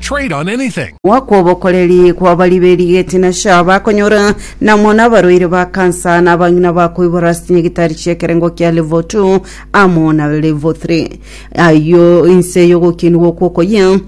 Trade on anything. Mwaka obokoreri kw'abaria b'erigeti na sha bakonyora namo nabarwaire ba kansa na abang'ina bakoibora ase chinyagitari chi'ekerengo kia level 2 amo na level 3 ayio inse y'ogokiinigwa okwo okoyia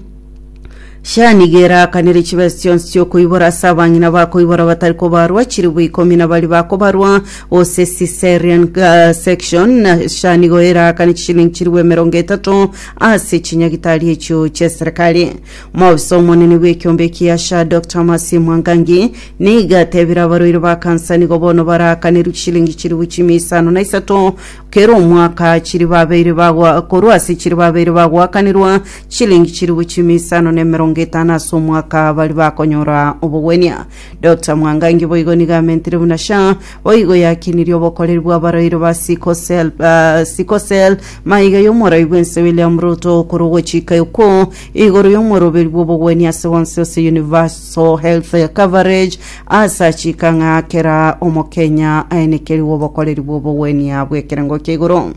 sha nigo eraakanire chibesa chionsi chi'okoibora ase abang'ina bakoibora batari kobarwa chilifu ikomi na baria bakobarwa gose cesarean uh, section na sha nigo eraakane chishilingi chilifu emerongo etato ase chinyagitari echio ch'eserekari. Omobisa omonene bw'ekiombe eki Asha Dr Mercy Mwangangi nigo atebire abarwaire ba kansa nigo bono barakanerwe chishilingi chilifu chimia isano na isato kera omwaka chiri babeire bagwa korwa ase chiri babeire bagwakanerwa chishilingi chilifu chimia isano na emerongo etano ase omwaka bari bakonyora obogwenia. Dr Mwangangi boigo nigo amentire buna Sha Boigo yakinirie obokoreri bw'abaroiri ba Sikosel, ah, Sikosel, maiga y'omorai bw'ense William Ruto okoro gochika okwo igoro y'omoroberi bw'obogwenia ase bonsi ase Universal Health Coverage ase achika ng'a kera Omokenya aenekerigwe obokoreri bw'obogwenia bw'ekerengo kia igoro.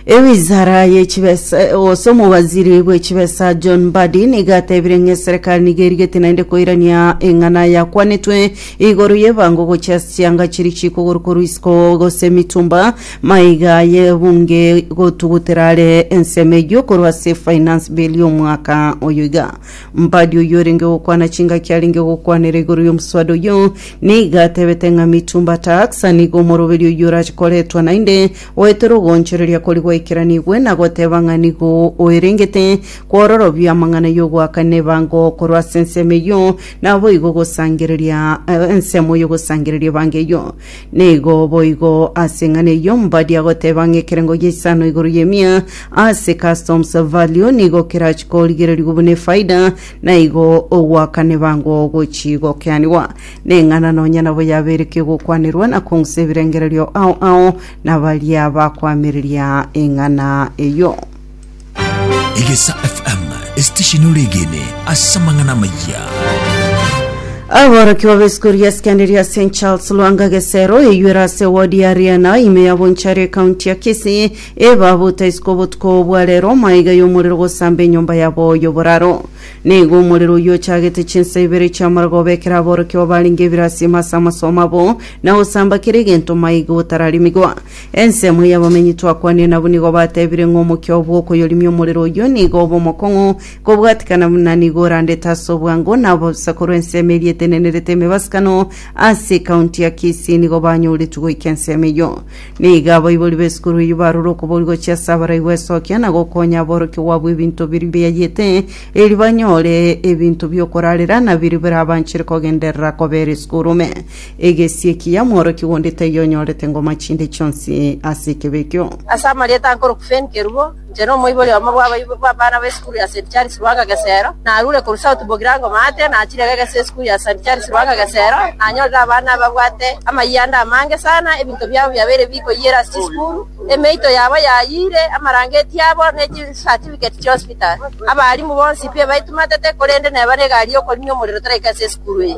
Ewizara yechibesa gose omowaziri bwechibesa John Mbadi niga atebire ng'a eserikari niga erigete naende koirania eng'ana yakwanetwe igoro y'ebango gochia ase chianga chiri chiiko korwa korwa isiko gose emitumba maiga y'ebunge gotugutera are ensemo eyio korwa ase efinance bill y'omwaka oyo iga. Mbadi oyio orenge gokwana chingaki arenge gokwanera igoro y'omoswada oyio nigo atebete ng'a Mitumba Tax nigo omoroberi oyio orache koretwa naende goetera ogoonchoreria koria gwaikeranigwe na goteba ng'a nigo oerengete kwororobia amang'ana y'ogoakana ebango korwa ase ensemo eyio naboigo gosangereria ensemo y'ogosangereria ebango eyio Nigo boigo ase eng'ana eyio mbadi agoteba ng'a ekerengo gia isano igoro y'emia ase customs value nigo kerachi korigererio buna efaida, na igo ogoakana ebango gochi gokeanigwa. Neng'ana nonya nabo yaberekio gokwanerwa na kong'usa ebirengererio ao ao nabaria bakoamereria eng'ana eyio. Egesa FM, esitesheni oregene ase amang'ana amayia. Aborokigwa b'esikuru ya sekendari ya St Charles Lwanga Gesero eyuere ase wodi ya Riana ime ya Bonchari ekaunti ya Kisii ebabuta isiko obotuko bwa rero maiga y'omorero gosamba enyomba yabo y'oboraro. Nigo omorero oyio ochagete chinsa ibere chi'amarogo obekera aborokigwa barenge ebirasi ime ase amasomo abo na gosamba kera egento maiga gotararemigwa. Ensemo y'abomenyi twakwanire nabwo nigo batebire ng'a omokio bw'okoyorimia omorero oyio nigo obe omokong'u kobwatikana buna nigo orandete ase obwango nabo bosa korwa ensemo eria etenenerete emebasikano ase ekaunti ya Kisii nigo banyoretwe goika ensemo eyio. Nigo abaibori b'esukuru eyio barure okobori gochia ase abaraibu esokia na gokonya aborokigwa abwo ebinto biria biayete erio banyore ebinto bi'okorarera na biria birabanchere kogenderera kobera esukuru ime. Egesie ki ya mworokia onde taiyo onyorete ngoma chinde chionsi ase ekebe ekio. Ase amarieta ankoroku Fane Kerubo, inche na omoibori omo bw'abaibori bw'abana b'esukuru ya St. Charles Ruanga Gesero, narure korwa South Bogirango Maate, nachire kegesa esukuru ya St. Charles Ruanga Gesero, nanyorire abana babwate amayanda amange sana, ebinto biabo biabeire bikoyiera ase chisukuru, emeito yabo yayiire, amarangeti abo, ne chisatifigeti chi'hospital. Abaalimu bonsi pi ebaitumatete, korende neba negari y'okorinia omorero toraika ase esukuru eye.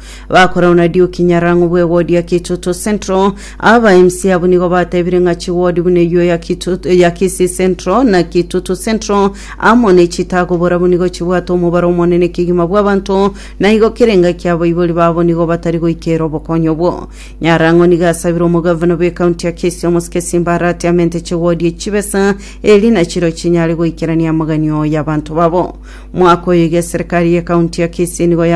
Bakora una Duke Nyarango bwe ward ya Kitutu Central. Aba MC abo nigo batebire ng'a chiward buna eyio ya Kitutu ya Kisii Central na Kitutu Central amo ne chitago borabwo nigo chibwate omobaro omonene kegima bw'abanto na igo kere engaki abaibori babo nigo batari goikera obokonyi obwo. Nyarango nigo asabire omogavana bwe county ya Kisii omosike Simba Arati amente chiward echi chibesa eri nachiro chinyare goikerania amagani oyo y'abanto babo. Mwaka oyo iga eserekari ye county ya Kisii nigo yamente